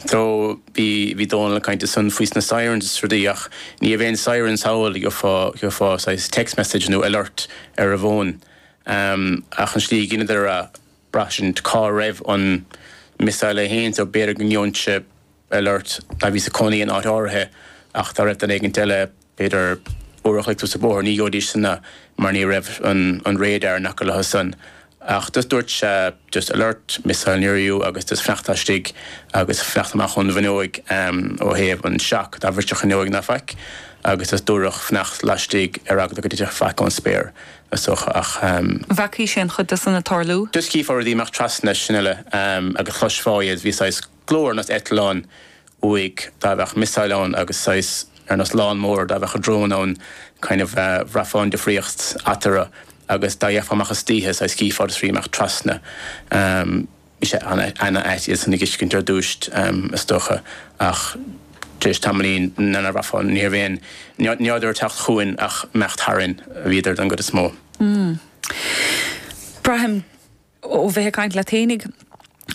So, bhí, bhí Dónall ag caint ansan faoi na sirens is rudaí ach ní raibh aon sirens thall, ach, gheofá, gheofá saghas text message nó alert ar an bhfón. Ehm, ach an slí a dheineadar é, bhraith sin cá raibh an missile féin so b'fhéidir go ngeobhainnse alert mar bhíos ag cónaí in áit áirithe ach dá raibh duine éigint eile, B'fhéidir, uair a chloig suas an bóthar, ní gheobhaidís san é, mar ní raibh an radar in aice leo san. Ach just dúirt sé, just alert, missile near you, agus just fanacht laistigh agus fanacht amach ón bhfuinneoig ó thaobh an shock, dá mbrisfeadh an fhuinneoig ná faic, agus just dúradh fanacht laistigh ar eagla go dtitfeadh faic ón spéir, ach ní fheacaigh mé an-chuid de san ag tarlú. Just chífeá rudaí ag imeacht trasna, sin uile, agus chloisfeá iad, bhí saghas. glór ar nós eitleáin uaidh dá bheadh missile ann agus saghas ar nós lawnmower dá bheadh drone ann kind of bhraithfeá an difríocht eatarthu agus dá bhféachfá amach istoíche saghas chífeá iad ag imeacht trasna bhí sé ana ait iad san a fheiscint ar dtúis is dócha ach tar éis tamaillín nuair a bhraithfeá ní raibh aon ní rabhadar ag teacht chugainn ach imeacht tharainn a bhíodar don gcuid is mó. Braithim. ó bheith ag caint leat fhéinig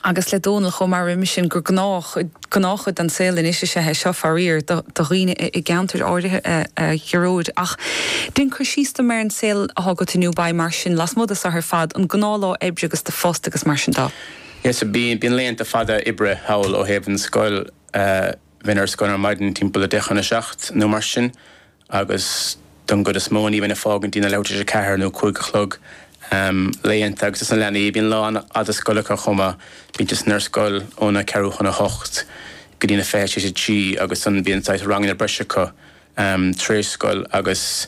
agus le Dónall chomh maith roimhe sin, gur gnách, gnáthchuid den saol anois is ea é seo, faraor, do dhaoine i gceantair áirithe, a Ghearóid. Ach déan cur síos dom ar an saol atá agat i nDúbai mar sin, lasmuigh de seo ar fad, an gnáthlá oibre agus do phost agus mar sin de. Yes, bíonn laethanta fada oibre thall ó thaobh an scoil. Bheinn ar scoil ar maidin timpeall a deich chun a seacht nó mar sin agus don gcuid is mó ní bheinn ag fágaint dtína leathuair tar éis a ceathair nó a cúig a chlog laethanta agus dos na leanaí bíonn lá an-fhada scoile acu chomh maith, bíonn siad san ar scoil óna ceathrú chun a hocht go dtína fiche tar éis a trí agus ansan bíonn saghas ranganna breise acu tar éis scoil agus.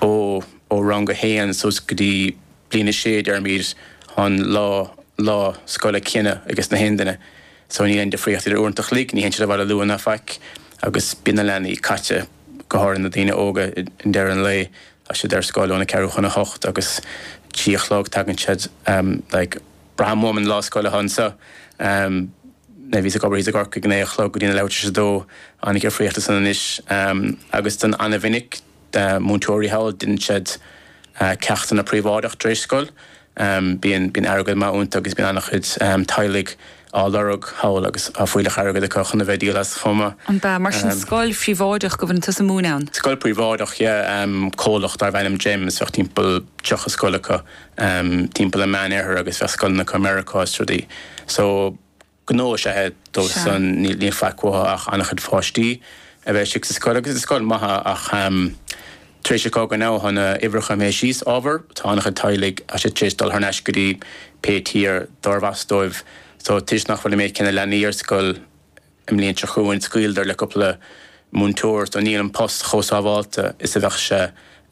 Ó rang a haon suas go dtí bliain a sé, déarfaimid, tá an lá scoile céanna ages gach aon duine. So níl aon difríocht idir uaireanta a chloig, ní théann siad abhaile luath ná faic agus bíonn na leanaí caite, go háirithe na daoine óga, i ndeireadh an lae. Tá siad ar scoil óna ceathrú chun a hocht agus trí a chlog tagann, tá siad like. Braithim uaim an lá scoile atá anseo. Nuair a bhíos ag obair thíos i gCorcaigh, naoi a chlog go dtína leathuair tar éis a dó, tá an-difríocht ansan anois agus go han-mhinic, na múinteoirí thall, deineann siad ceachtanna príobháideach tar éis scoil. Bíonn airgead maith iontu agus bíonn an-chuid teaghlaigh á lorg thall agus tá fuílleach airgid acu chun a bheith ag díol as chomh maith. An ea, mar sin, scoil phríobháideach go bhfuil tusa ag múineadh ann? Scoil príobháideach, yeah. Comhlacht darbh ainm Gems, bheadh timpeall 30 scoil acu timpeall an meánoirthear agus bheadh scoileanna acu i Meiriceá is rudaí. So. gnó is ea é. Dóibh san níl faic uathu ach an-chuid páistí a bheith istigh sa scoil. Agus is scoil maith í ach tar éis an chogaidh tá na huimhreacha imithe síos ábhar, tá an-chuid teaghlaigh tar éis dul thar n-ais go dtí pé tír darb as dóibh. So toisc nach bhfuil an méid céanna leanaí ar scoil i mbliain seo chugainn scaoileadar le cúpla múinteoir. So níl an post chomh sábháilte is a bheadh sé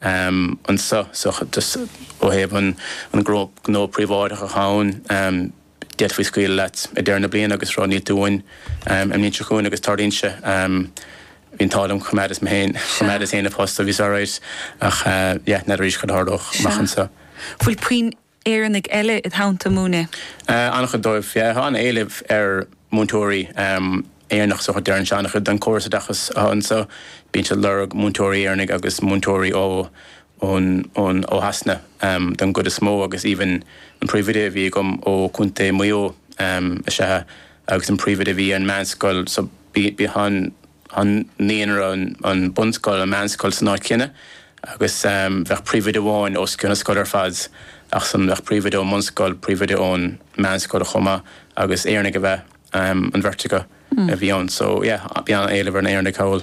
anseo. So just ó thaobh an gnó príobháideach atá ann. D'fhéadfaí scaoileadh leat ag deireadh na bliana agus rá níl tú uainn, an bhliain seo chugainn agus tarlaíonn sé. Bhí an t-ádh liom, choimeádas mo, choimeádas féin mo phost so bhíos alright ach yeah, n'fheadar arís, cad a tharlódh amach anseo? Bhfuil puinn Éireannaigh eile id theannta ag múineadh? An-chuid dóibh, yeah, tá an-éileamh ar mhúinteoirí Éireannach so deireann sé an-chuid den córas oideachas anseo, bíonn siad ag lorg múinteoirí Éireannaigh agus múinteoirí ó ó Shasana don gcuid is mó agus even an príomhoide a bhí agam ó Contae Mhaigh Eo is ea é agus an príomhoide a bhí ar an meánscoil so bíonn an naíonra, an bunscoil, an meánscoil san áit chéanna agus bheadh príomhoide amháin os cionn na scoile ar fad ach san bheadh príomhoide ón mbunscoil, príomhoide ón meánscoil chomh maith agus Éireannaigh a bheadh. ab ea an bheirt acu a bhí ann. So yeah, bhí an-éileamh ar na Éireannaigh thall.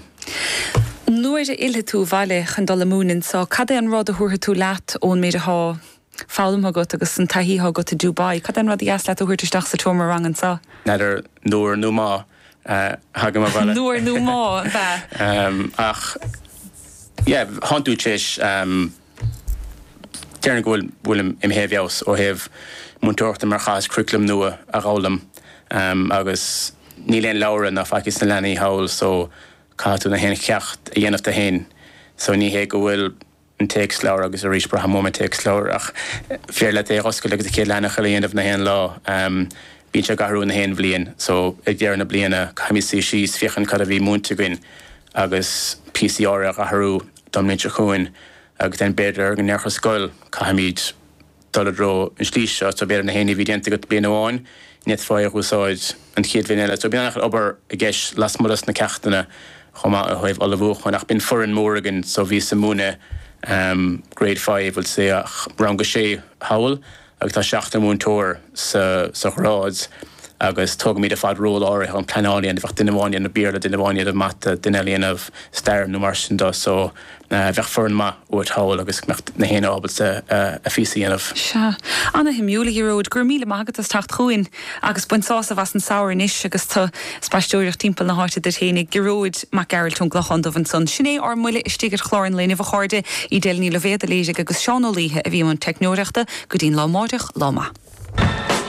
Nuair a fhillfidh tú abhaile chun dul ag múineadh anseo, cad é an rud a thabharfaidh tú leat ón méid atá foghlamtha agat agus an taithí atá agat i Dubai? Cad é an rud ba dheas leat a thabhairt isteach sa tseomra ranga anseo? N'fheadar, nuair nó má a thagaim abhaile. Nuair nó má, an ea? Ach yeah, shann tú tar éis. Déarfainn go bhfuil imithe i bhfeabhas ó thaobh múinteoireachta mar chaitheas curriculum nua a dh'fhoghlaim agus níl aon leabhra ná faic ages na leanaí thall so caithfidh tú na haon cheacht a dhéanamh tú fhéin so ní hé go bhfuil an téacsleabhar agus arís braithim uaim an téacsleabhar ach b'fhéarr leat é dh'oscailt agus an chéad leathanach eile a dhéanamh na haon lá. Bíonn sé ag athrú na haon bhliain so ag deireadh na bliana caithfimid suí síos féachaint cad a bhí múinte againn agus píosaí áirithe dh'athrú. don mbliain seo chugainn agus then b'fhéidir go ndéarfadh an scoil caithfimid dul i dtreo an slí seo so b'fhéidir na haon ní a bhí déanta agat bliain amháin ní fhéadfá é a úsáid an chéad bhliain eile so bíonn an-chuid obair i gceist lasmuigh dos na ceachtanna chomh maith ó thaobh ullmhúcháin ach bíonn foireann mór againn so bhíos ag múineadh Grade Five bhuel sea rang a sé thall agus tá seachtar múinteoir sa ghrád agus tógaimid ar fad ról áirithe an phleanáil a dhéanamh, bheadh duine amháin ag déanamh Béarla, duine amháin ag déanamh Mata, duine eile ag déanamh Stair nó mar sin do so bheadh foireann maith uait thall agus go mbeadh na héinne ábalta a phíosa a dhéanamh. Sea. Ana-shuimiúil, a Ghearóid. Go raibh míle maith agat as teacht chugainn. Agus bain sásamh as an Samhradh anois agus tú ag spaisteoireacht timpeall na háite duit fhéin. Gearóid Mac Gearailt ón gClochán Dubh ansan. Sin é ár mbuille istigh ar chlár an lae inniubh, a chairde. Edel Ní Loibhéad a léirigh agus Seán Ó Laoithe a bhí i mbun teicneoireachta. Go dtí an lá máireach, lá maith.